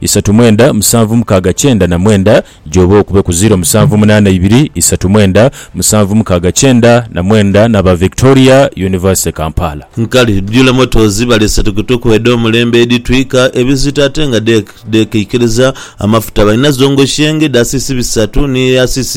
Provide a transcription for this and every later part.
isatu mwenda musanvu mukaaga kyenda na mwenda gy'oba okube ku ziro musanvu munaana ibiri isatu mwenda musanvu mukaaga kyenda na mwenda n'aba Victoria University Kampala. Nkali dhula motors balese tukutuku edh'omulembe edhitwika ebizito ate nga dhekeikiriza amafuta. Balina zongo shenge dha cc bisatu ni eya cc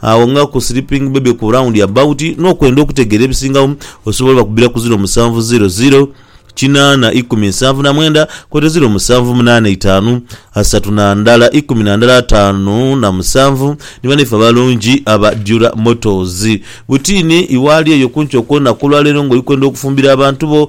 Agho nga ku sleeping baby ku round about n'okwenda okutegeera ebisingagho, osobola obakubira ku ziro musanvu ziro ziro, kinaana ikumi nsanvu na mwenda kwoita ziro musanvu munaana eitaanu, asatu na ndala ikumi na ndala ataanu na musanvu ni banaife abalungi aba Dura Motors. Butiini, iwe ali eyo kumpi okwonaku olwaleero ng'oli kwenda okufumbira abantu bo,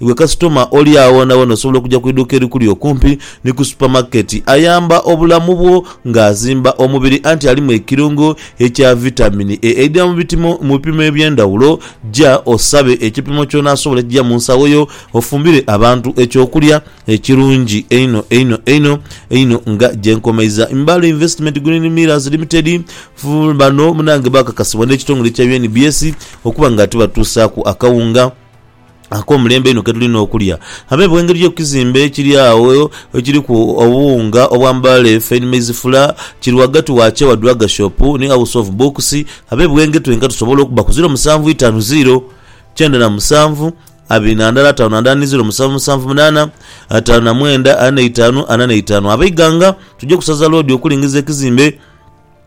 Iwe kasitoma oli agho na ghona osobola okuja ku iduuka erikuli okumpi ni ku supamaketi. Ayamba obulamu bwo ng'azimba omubiri anti alimu ekirungo ekya vitamini E eidhira mu bitimo mu bipimo eby'endhawulo. Ja osabe ekipimo ky'onaasobola ekija mu nsawo yo ofumbire abantu eky'okulya ekirungi einho einho einho einho nga gye nkomeiza. Imbale Investment Green Millers Limited, Bano munange baakakasibwa n'ekitongole ekya UNBS okuba nga tibatuusaaku akawunga. ak'omulembe einho ke tuli n'okulya. Abe bwengeri yo ku kizimbe ekiri agho ekiriku obuwunga obw'amabaale, fine maize flour, kiri ghagati wa Chewa Drug Shop ni House of Books, abe Bwenge twenka tusobola okuba ku ziro musanvu itaanu ziro, kyenda na musanvu, abiri na ndala ataanu na ndala ni ziro musanvu musanvu munaana, ataanu na mwenda ana na itaanu ana na itaanu. Ab'eighanga tuje ku saza loodi okulingiza ekizimbe.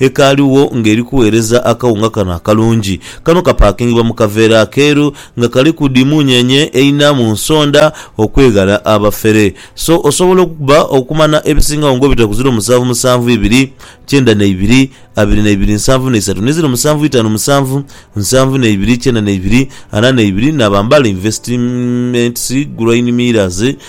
Ekaligho ng'eri kugheereza akawunga kano akalungi. Kano kapaakingibwa mu kaveera akeeru nga kaliku dhi muunyenye eina mu nsonda okweghala abafere. So osobola okukuba okumanha ebisingagho ng'obita ku ziro musanvu musanvu ibiri, kyenda na ibiri, abiri na ibiri nsanvu na isatu ni ziro musanvu itaanu musanvu, nsanvu na ibiri kyenda na ibiri, ana na ibiri, na bambala investimentsi, groin mirrors,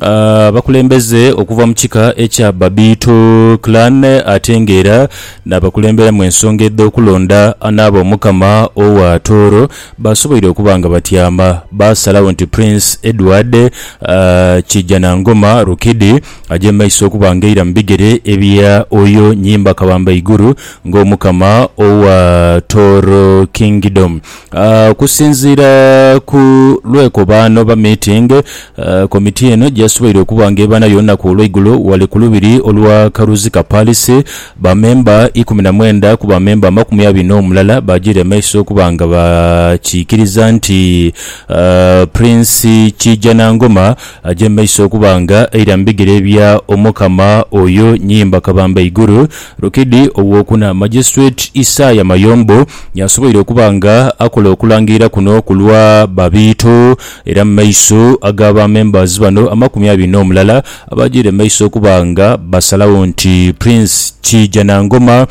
abakulembeze okuva mu kika ekya Babiito Clan ate nga era n'abakulembera mu ensonga edh'okulonda anaaba Omukama owa Tooro baasoboire okuba nga batyama baasalagho nti Prince Edward Kijanangoma Rukidi aje mu maiso okuba nga aira mu bigere ebya Oyo Nyimba Kabambaiguru ng'Omukama owa Tooro Kingdom. Okusinziira ku lwekobaano oba meeting, komiti eno gyeyasoboire okuba nga ebanayo olunaku olweigulo ghale ku lubiri olwa Karuzika Palace, ba memba ikumi na mwenda ku ba memba amakumi abiri n'omulala baagiire maiso okuba nga bakiikiriza nti Prince Kiijanangoma aje mumaiso okuba nga aira mu bigere bya Omukama oyo Nyimba Kabamba Iguru Rukidi ow'okuna. Magistrate Isaya Mayombo y'asoboire okuba nga akola okulangirira kuno ku lwa ba Biito era mu maiso aga ba members bano amakumi abiri n'omulala abaajaire mu maiso okuba nga basalagho nti Prince Kiija Nangoma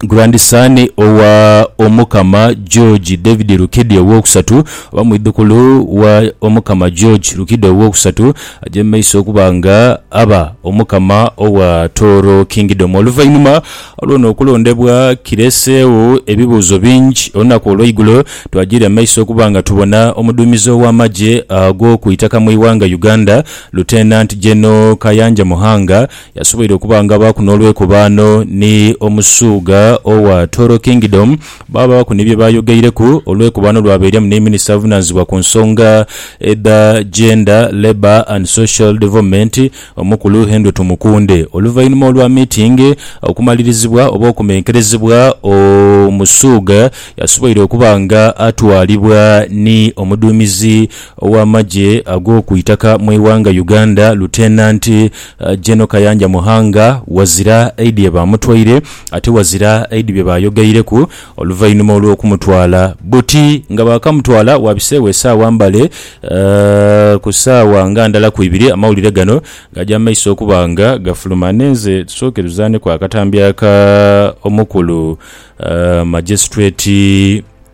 Grandson owa Omukama George David Rukidi Owookusatu, oba mwidhukulu wa Omukama George Rukidi Owookusatu, aja mu maiso okuba nga aba Omukama owa Tooro Kingdom. Oluvainhuma lw'ono okulondebwa, kireseegho ebibuuzo bingi. Olunaku olweigulo twajira mu maiso okuba nga tubona omuduumizi ow'amagye ago ku itaka mu ighanga Uganda, Lieutenant General Kayanja Muhanga, Yasoboire okuba nga abaaku n'olwekobaano ni Omusuugha owa Toro Kingdom, baabaaku ni bye baayogeireku. Olwekobaano lwabairiamu ni minisita avunaanizibwa ku nsonga edha Gender, Labour and Social Development, Omukulu Henry Tumukunde. Oluvainhuma olwa miitingi okumalirizibwa oba okumenkerezebwa, Omusuugha yasoboire okuba nga atwalibwa ni Omuduumizi ow'amagye ag'oku itaka mu ighanga Uganda, Lieutenant. Gen Kayanja Muhanga wazira aidhi ye baamutwaire ate wazira aidhi bye baayoghaireku oluvainhuma olw'okumutwala. Buti nga baakamutwala waabiseegho esaawa mbale ku saawa nga ndala ku ibiri amawulire gano gaaja mu maiso okuba nga gafuluma. Nenze tusooke tuzaaneku akatambi aka omukulu Magistrate.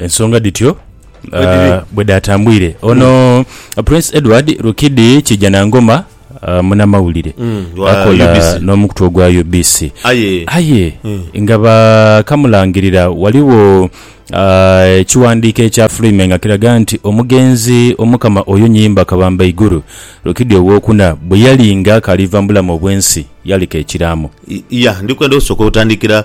Ensonga dhityo ah, bwe dhaatambwire ono mm. Prince Edward Rukidi Kijanangoma ah, munamawulire mm, akola n'omukutu ogwa UBC aye mm. nga bakamulangirira waliwo ah, ekiwandiiko ekya Freeman nga kiraga nti omugenzi omukama oyo nyimba kabamba iguru Rukidi owokuna bwe yali nga akaliva mu bulamu obw'ensi yaleka ekiraamo. Ya ndikwenda osooka otandikira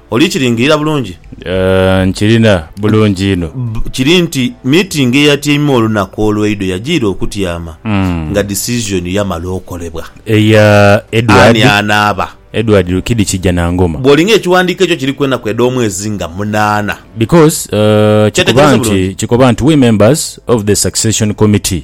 Oli kiringirira bulungi? Aah, nkirina bulungi inho. Bbu, kiri nti, miitingi eyatyaimwa olunaku olweidho yajiira okutyama nga disizoni yamala okolebwa. Eya Edward. Ani anaaba. Edward Rukidi Kijanangoma. Bwoli nga ekiwandiiko ekyo kiriku enaku edh'omwezi nga munaana. Because, uh, kikoba Kyetegereze nti, bulungi. kikoba nti, we members of the succession committee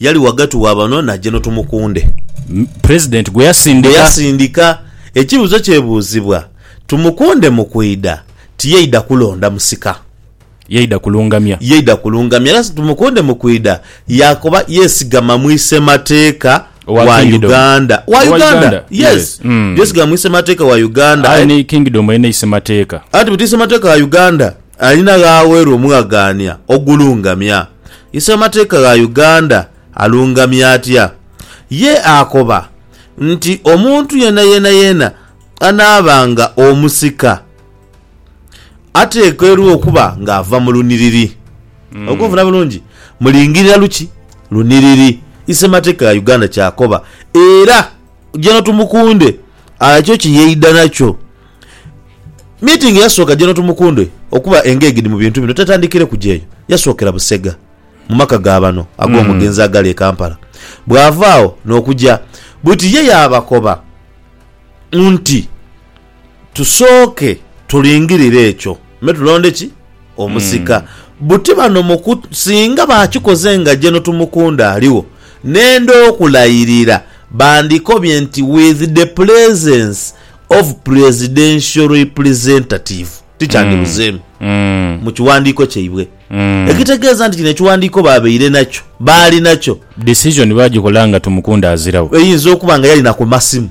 Yali ghagati wa bano na Jeno Tumukunde. President gwe yasindika. Ekibuzo kyebuuzibwa Tumukunde mu kwidha tiyaidha kulonda musika. Yaidha kulungamya. Yaidha kulungamya era Tumukunde mu kwidha yakoba yesigama mu isemateeka wa Uganda. Wa Uganda. Yes. Yesigama mu isemateeka wa Uganda. Aye ni Kingdom erina isemateeka. Anti buti isemateeka wa Uganda. Alina gh'aweerwa omughagaania ogulungamya. Isemateeka gha Uganda alungamya atya? Ye akoba nti omuntu yeenayeena yeena anaaba nga omusika ateekeirwa okuba ng'ava mu lunhiriri. Ogwo nfuna bulungi? Mulingirira luki? Lunhiriri. Isemateeka gha Uganda ky'akoba era. General Tumukunde arakyo kye yeidha nakyo. Meeting eyasooka General Tumukunde okuba engaged mu bintu bino tatandikireku gyeyo, yasookera Busega mu maka ga bano ag'omugenzi agali e Kampala bw'ava agho n'okuja buti ye yaabakoba nti, Tusooke tulingirire ekyo me tulonde ki? Omusika. Buti bano muku singa baakikoze nga General Tumukunde aligho, nenda okulayirira bandikobye nti with the presence of Presidential Representative. Tikyandibuzeemu mu kiwandiiko kyaibwe. Ekitegeeza nti kino ekiwandiiko baabaire nakyo, baali nakyo. Decision baagikola nga Tumukunde aziragho. Eyinza okuba nga yali na ku masimu.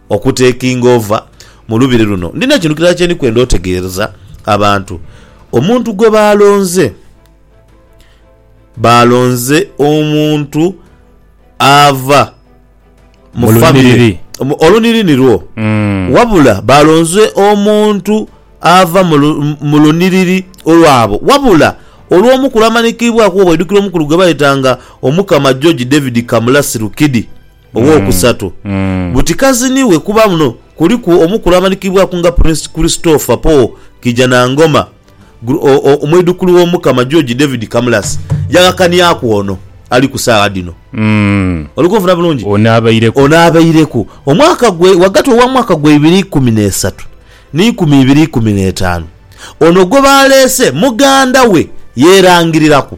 Oku taking over mu lubiri luno, ndina ekintu kirala kye ndi kwenda otegeereza abantu. Omuntu gwe baalonze, baalonze omuntu ava mu famire, olunhiri nirwo, wabula baalonze omuntu ava mu lunhiriri olwabo. Wabula olw'omukulu amanikiibwaku, bwoba oidukira omukulu gwe baayetanga Omukama George David Kamulasi Rukidi, Ow'okusatu, buti kaziniwe kuba muno kuliku omukulu amanikibwaku nga Prince Christopher Paul Kijanangoma, Omwidhukulu w'Omukama George David Kamurasi yaghakanhyaku ono ali ku saagha dhino. Oli kunfuna bulungi? Ono abaireku omwaka gwe ghagati ogha mwaka gwa ibiri ikumi n'esatu ni nkumi ibiri ikumi n'etaanu. Ono gwe baaleese muganda we yeerangiriraku.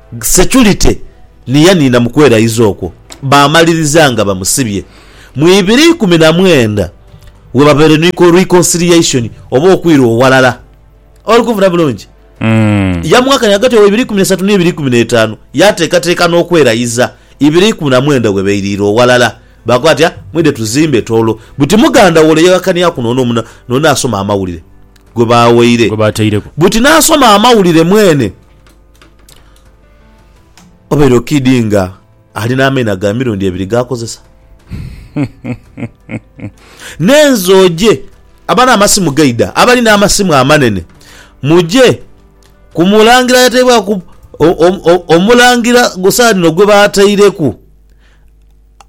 Securite ni yaniina mu kweraiza okwo baamaliriza nga bamusibye. Mu ibiri ikumi na mwenda we babaire ni reconciliation oba okwirwa owalala. Oli kunfuna bulungi? Yamughakania ghagati wa ibiri ikumi na isatu ni ibiri ikumi na etaanu, yaateekateeka n'okweraiza ibiri ikumi na mwenda we bairiire owalala. Baakoba bati, Ah, mwidhe tuzimbe toolo. Buti muganda wo ole yaghakaniaku n'ono omu n'ono asoma amawulire gwe baawaire. Gwe baataireku. Buti n'asoma amawulire mwene. Obeire okiidhi nga ali n'amaino aga mirundi ebiri g'akozesa. Nenze oje abali n'amasimu gaidha, abali n'amasimu amanene muje ku mulangira ayateibwaku omulangira ku saagha dhino gwe baataireku.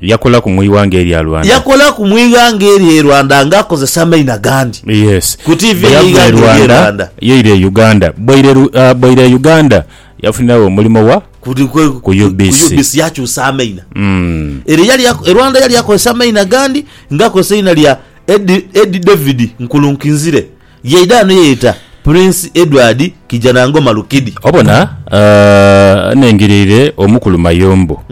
Yakolaku mu ighanga erya Rwanda. Yakolaku mu ighanga erye Rwanda nga akozesa amaino agandi. Yes. Ku TV Bwe eye yava e ighanga erye Rwanda Rwanda. yaira e Uganda. Bwaira e Ru- ah, bwaira e Uganda yafuniragho omulimo wa Ku di- ku- Ku ku- UBC. ku UBC yakyusa amaina. Mm. Ere yali ako- e Rwanda yali akozesa amaina agandi nga akozesa eina lya Ed, Ed David Nkulunkinzire. Yaidha ghano yeeyeta Prince Edward Kijanangoma Lukidi. Obona nnengeleire Omukulu Mayombo,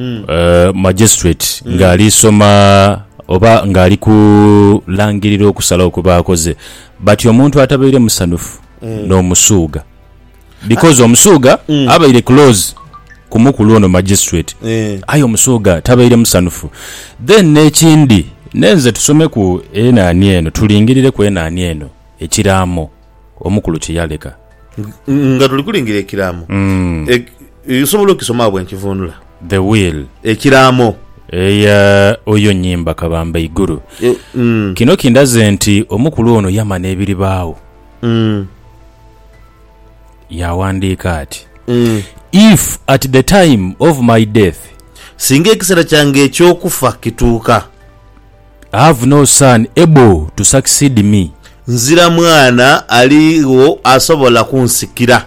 Magistrate, ng'ali soma oba ng'ali kulangirira okusalawo kwe baakoze bati omuntu atabaire musanhufu n'omusuugha. Because Omusuuga abaire close ku mukulu ono Magistrate Eh. aye Omusuuga tabaire musanhufu. Then n'ekindi nenze tusomeku enhaani eno tulingirireku enhaani eno ekiraamo omukulu kye yaleka. Ng- Nga tuli kulingira ekiraamo Mm. Ek- Osobola okisoma bwe nkivunula The will ekiraamo eya oyo Nyimba Kabamba Iguru. Eh, mm. Kino kindaze nti omukulu ono yamana ebiribaawo. Yaawandiika ati, If at the time of my death. Singa ekiseera kyange eky'okufa kituuka. Have no son able to succeed me. Nzira mwana aligho asobola kunsikira.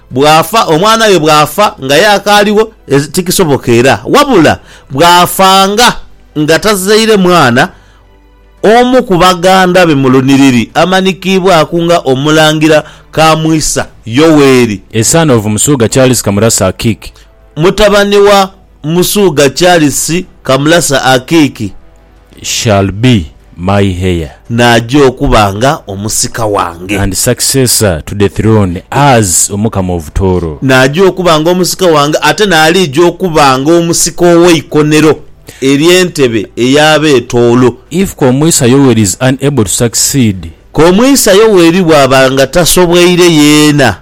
Bw'afa, omwana we bw'afa nga aye akaaliwo, tikisoboka era. Wabula bw'afanga nga tazaire mwana, omu ku baganda be mu lunhiriri amanikiibwaku nga Omulangira Kamwisa Yoweri. A son of Musuuga Charles Kamurasa Akiiki. Mutabani wa Musuuga Charles Kamurasa Akiiki. shall be my heir. N'aja okuba nga omusika wange. And successor to the throne as Omukama of Tooro. N'aja okuba nga omusika wange, ate n'aliija okuba nga omusika ow'eikonero ery'entebe ey'Abeetoolo. If Komwisa Yoweri is unable to succeed. Komwisa Yoweri bw'aba nga tasobweire yeena.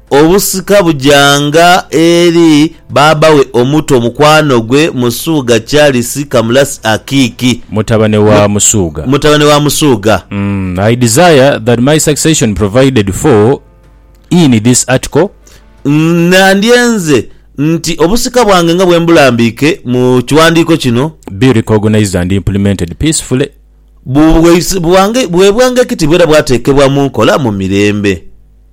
Obusika bujanga eri baaba we omuto mukwano gwe Musuuga Charles Kamulasi Akiiki. Mutabane wa Musuuga. Mutabane wa Musuuga. I desire that my succession provided for in this Article. Nandyenze nti obusika bwange nga bwembulambiike mu kiwandiiko kino. Be recognised and implemented peacefully. Bubwe bwange ekitibwa era bwatekebwa mu nkola mu mirembe.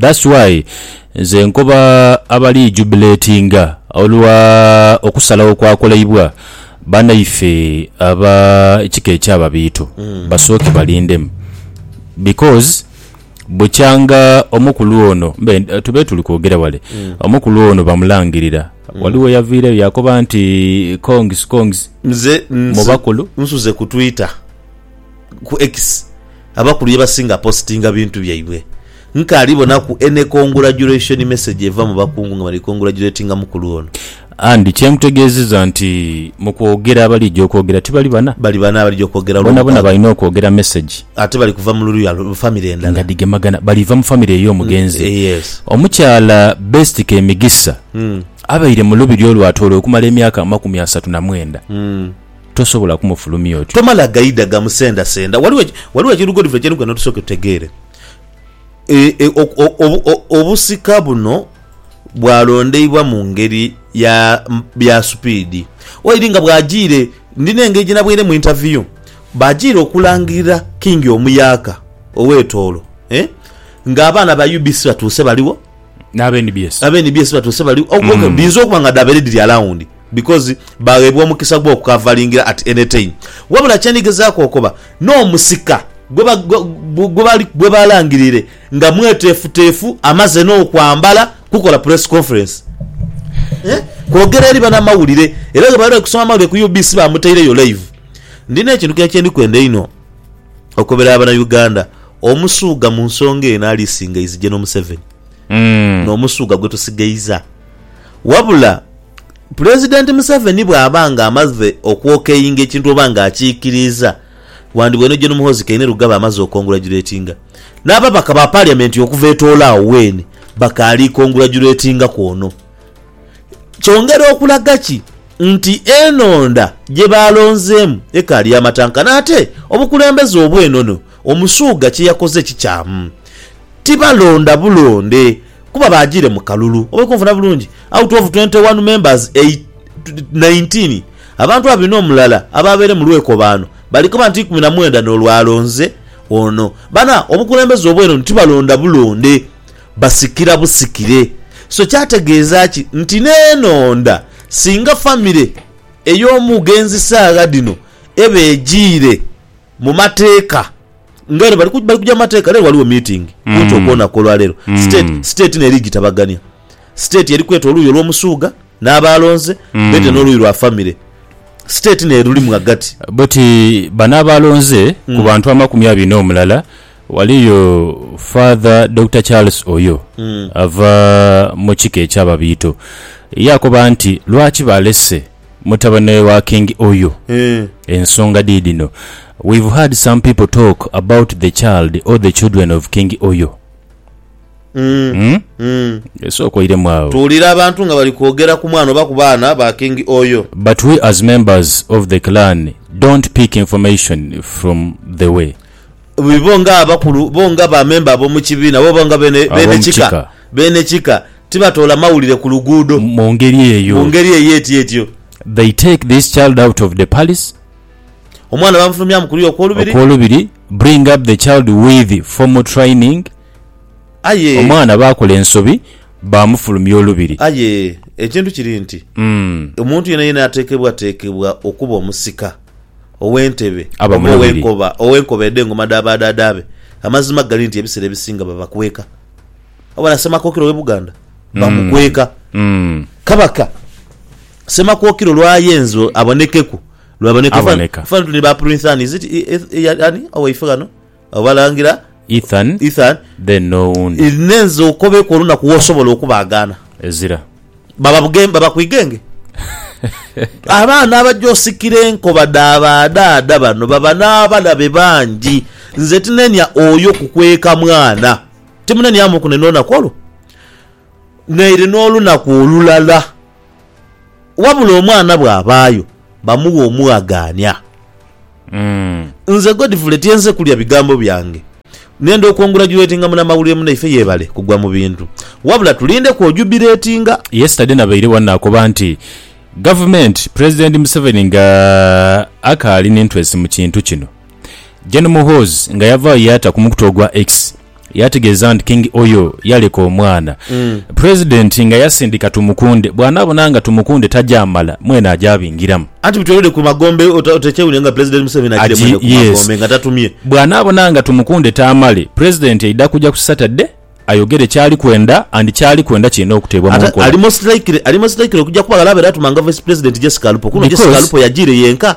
That's why nze nkoba abali jubilatinga olwa okusalagho kwakolaibwa banaife aba kika ekya Babiito basooke balindemu because bukyanga omukulu ono tube tuli kwogera wale omukulu ono bamulangirira waliwo eyaviireyo yakoba nti congs congs Nze, mu nze bakulu. nsuze ku twitter. ku X abakulu yebasinga postinga bintu byaibwe. Nkaali bonaku any congratulation message eva mu bakungu nga bali congratulatinga mukulu ono. And kyemutegeziza nti mukwogera abalija okwogera tibali bana? Bali bana abalija okwogera olwo Bonabona mukago. balina okwogera message. Ate bali kuva mululya family endala. Nga dhigemagana. Baliva mu family eyo omugenzi. Yes. Omukyala Best Kemigisa abaire mu lubiri olwatoolo okumala emyaka amakumi asatu na mwenda. tosobola kumufulumya otyo. Tomala gaidha gamusendasenda. Ghaligho, ghaligho ekintu Godfrey kye nogenda tusooke tutegeere. E, e, ok, o, obu, o, obusika buno bwalondeibwa mu ngeri ya, ya supiidi. Waidhi nga bwajiire, ndina engeri gye naboire mu interview, baajiire okulangirira King Omuyaaka ow'e Tooro, eh, nga abaana ba UBC batuuse baligho. N'aba nbs. Aba nbs batuuse baligho. Ok, ok, dhiyinza okuba nga dhaabaire dhiri alawundi. because bagheebwa omukisa gw'okukavalingira at any time. Wabula kye ndi gezaaku okoba, n'omusika gwe balangirire nga mweteefuteefu amaze n'okwambala kukola press conference kwogera eri banamawulire era ghe bali okusoma amawulire ku UBC bamutaireyo live. Ndi n'ekintu kye ndi kwenda einho okobera Abanauganda, Omusuuga mu nsonga eno alisinga is General Museveni. N'omusuuga gwe tusigaiza. Wabula Pulezidenti Museveni bw'aba nga amaze okwokeinga ekintu oba nga akiikiriiza, wandibwa eno Gen Muhoozi Kainerugaba amaze okongulajuletinga n'ababaka ba Paliyamenti okuva etoola agho weene bakaali kongulajuletingaku ono. Kyongera okulaga ki nti enhonda gye baalonzeemu ekaali ya matanka n'ate obukulembeze obw'enono Omusuuga kye yakoze kikyamu. Tibalonda bulonde. Kuba baajiire mu kalulu. Oba oli kunfuna bulungi? Out of twenty one members, nineteen, abantu abiri n'omulala abaabaire mu lwekobaano, bali kuba nti ikumi na mwenda n'olwalonze ono. Bana, obukulembeze obw'enoni tibalonda bulonde, basikira busikire. So kyategeeza ki nti n'enhonda singa famire ey'omugenzi saagha dhino eba ejiire? mu mateeka nga eno bali kuja mu mateeka lero waliwo meeting mm. kunti okwonaku olwalero mm. state state neri gitabagania state eri kweta oluuyi olwomusuuga n'abaalonze mm. bete n'oluuyi lwa famire state nerulimu agati bweti bano abaalonze mm. ku bantu amakumi abiri n'omulala waliyo father dr charles oyo mm. ava mu kika ekyababiito yakoba nti lwaki balese Mutabane wa king Oyo ensonga dhidhino we've heard some people talk about the child or the children of king Oyo umm sooka oiremu agho. Tuwulira abantu nga bali kwogera ku mwana oba ku baana ba king Oyo. But we as members of the clan don't pick information from the way. Bo nga abakulu, bo nga ba member abomukibiina, bo nga bene kika. Beene kika tibatoola mawulire ku luguudo Mu ngeri eyo. mu ngeri ey'ety'etyo. They take this child out of the palace. Omwana bamufulumyamu ku luya okw'olubiri. Okw'olubiri, bring up the child with formal training. Aye. Omwana baakola ensobi, baamufulumya olubiri. Aye, ekintu kiri nti, omuntu yenayena ateekebwateekebwa okuba omusika, ow'entebe, Aba oba mulabiri. ow'enkoba, ow'enkoba edh'engoma dha baadhaadhaabe, amazima gali nti ebiseera ebisinga babakweka. Wabona Ssemakokiro w'e Buganda bamukweka. Kabaka Ssemakokiro lw'ayenze abonekeku, lw'aboneka. Aboneka. Fana tuli ba Printhani, is it i- i- i- ya- ani owaife ghano Abalangira Ethan Ethan, then n'owundi. i- nenze okobeku olunaku w'osobola okubaagaana. Ezira. Baba buge- baba ku igenge. Abaana abaja osikira enkoba dha badhaadha bano baba n'abalabe bangi. Nze tinenia oyo kukweka mwana. Timuneniamuku naine lunaku olwo, naire n'olunaku olulala, wabula omwana bw'abaayo bamughe omughagaania. Nze Godfrey tyenze kulya bigambo byange nenda okwongurajuletinga munamawulire munaife yebale kugwa mu bintu wabula tulinde kwojubiretinga. Yesterday nabaire wano nakoba nti Gavumenti, Pulezidenti Museveni nga akaali n'interest mu kintu kino. Gen Muhoozi nga yavaayo yaata ku mukutu ogwa X yaategeeza nti King Oyo yaleka omwana Pulezidenti nga yasindika Tumukunde bw'anaabona nga Tumukunde tagyamala mwene agyabingiramu. Anti bitwelede ku magombe ota otekyewulira nga Pulezidenti Museveni agire Agi- mwene ku yes. magombe nga tatumye. Bw'anaabona nga Tumukunde taamale, Pulezidenti aidha kuja ku Saturday ayogere kyali kwenda and kyali kwenda kirina okuteebwa mu Ate nkola. ali most likely ali most likely okugya kuba ghale abaire atuma nga Vice Pulezidenti Jessica Alupo. Kuno Jessica Because- Alupo yagiire yenka.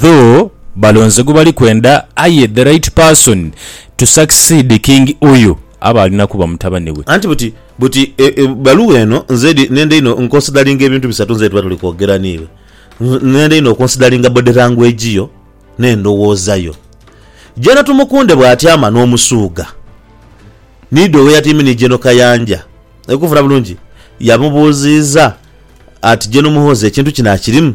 though balonze gwebali kwenda aye the right person to succeed king uyu aba alina kuba mutabani we. Anti buti buti ebbaluwa eno nze nenda inho nkonsidalinga ebintu bisatu nze bwetuba tuli kwogera niiwe. Nenda inho okonsidalinga body language yo n'endhowooza yo. Gen Tumukunde bw'atyama n'omusuuga niidha oweyatyaime ni Gen Kayanja, oli kunfuna bulungi, yamubuuziiza ati Gen Muhoozi ekintu kino akirimu?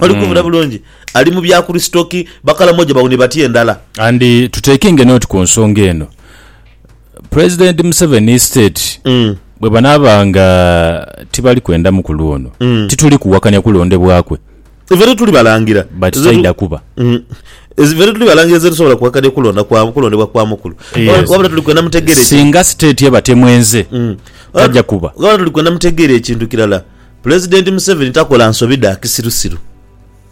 Oli kubuna bulungi? Ali mu bya Kurisito ki? Bakalamoja baune batya endala? And to taking a note ku nsonga eno, President Museveni state bwebanaaba nga tibali kwenda mukulu ono, tituli kuwakanya kulondebwa kwe. Ife tetuli balangira. But taidha kuba. Ife tetuli balangira ze tusobola kuwakanya kulonda kwa, kulondebwa kwa mukulu. Yes. Wabula tuli kwenda mutegeere ki, Singa state eba temwenze, taja kuba. wabula tuli kwenda mutegeere ekintu kirala Pulezidenti Museveni takola nsobi dha kisirusiru.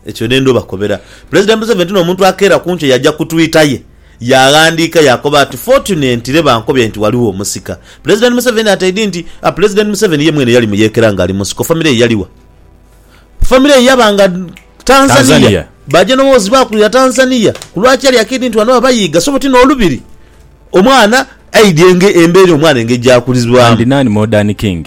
Ekyo n'endhu obakobera. Pulezidenti Museveni ti n'omuntu akeera ku nkyo yaja ku Twitter ye yaaghandiika yaakoba ati, Fortunently bankobye nti ghaligho omusika. Pulezidenti Museveni ataidhi nti, A Pulezidenti Museveni ye mwene yali muyeekera ng'ali mu nsiko. Famire ye yali wa? Famire ye yaba nga Tanzania. Baaja n'omuwozi baakulira Tanzania. Ku lwaki yali akeidhi nti ghano baba yiiga? Sobo ti n'olubiri. Omwana aidhi embeera omwana engeri gy'akulizibwamu. Andi naani Modern King?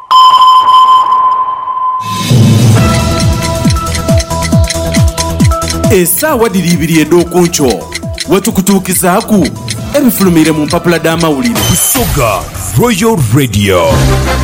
Esaawa dhiri ibiri edh'oku nkyo we tukutuukizaaku ebifulumiire mu mpapula dh'amawulire. Busoga Royal Radio.